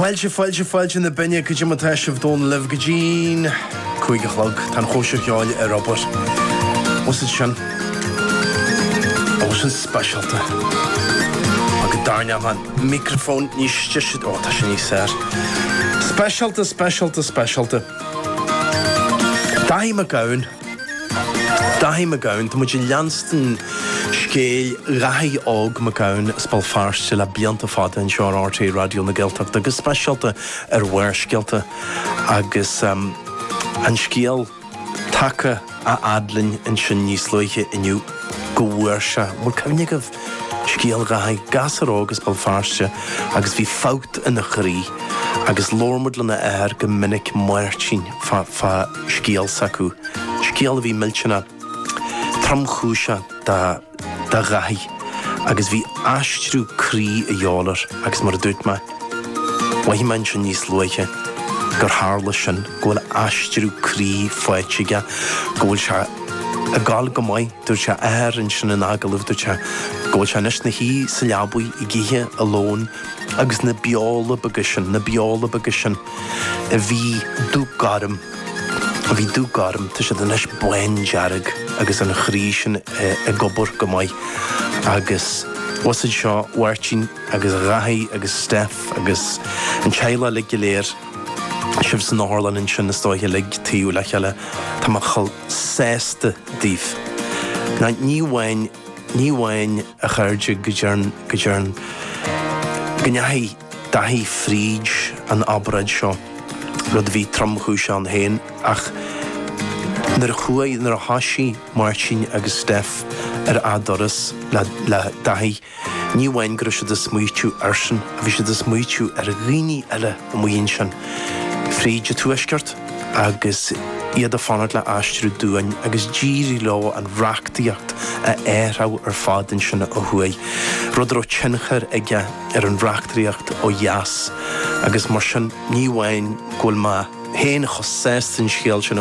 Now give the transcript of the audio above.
Fáilte, fáilte, fáilte na Binne, go dtí mó, tá sibh domh, liom go dtí an cúig a chlog, tá an chóisir cheoil ar obair. Is é seo, ó seo speisialta, agus dar neamh an microphone níos deise, ó tá sin níos fhearr. Speisialta, speisialta, speisialta. Daithí Mac Gabhann. Daithí Mac Gabhann. Tá muid ag leanstan scéal Dhaithí Óg Mac Gabhann as Béal Feirste le blianta fada anois ar RTÉ Raidió na Gaeltachta, go speisialta ar Bharrscéalta. Agus an scéal tagtha a fhad linn ansin níos luaithe inniu go bhfuair sé, an bhfuil cuimhne agaibh? Scéal Dhaithí, gasur óg as Béal Feirste agus bhí fabht in a chroí agus labhair muid lena athair go minic Máirtín fá scéal s'acu, scéal a bhí millteanach tromchúiseach do Dhaithí agus bhí aistriú croí a dhíobháil air agus mar a dúirt mé, mhaígh mé ansin níos luaithe gur tharla sin, go bhfuil aistriú croí faighte aige, go bhfuil sé ag goil go maith. Dúirt a athair, ansin in agallamh, dúirt sé go bhfuil sé anois ina shuí sa leabaigh ag ithe a lón agus na beola beaga sin, na beola beaga sin a bhí dubh gorm, a bhí dubh gorm, tá siad anois bándearg agus an croí sin ag obair go maith. Agus daoibhse a Mháirtín agus a Dhaithí agus Steph agus an teaghlach uilig go léir, sibh san otharlann ansin istigh uilig taobh le chéile, tá mé sásta daoibh. Á ní amháin, ní amháin, a chairde, go dtearn, go dtearn, go ndeachaigh Daithí fríd an obráid seo, rud a bhí tromchúiseach ann féin, ach nuair a chuaigh, nuair a thoisigh Máirtín agus Steph ar a' turas le, le Daithí, Ní amháin go raibh siad ag smaoitiú airsean, bhí siad ag smaoitiú ar dhaoine eile amuigh ansin fríd an Tuaisceart agus iad ag fanacht le aistriú duán agus d'éirigh leo an reachtaíocht a athrú ar fad ansin ó thuaidh, rud a raibh tionchar aige ar an reachtaíocht ó dheas agus mar sin ní amháin go bhfuil mé féin chomh sásta den scéal sin a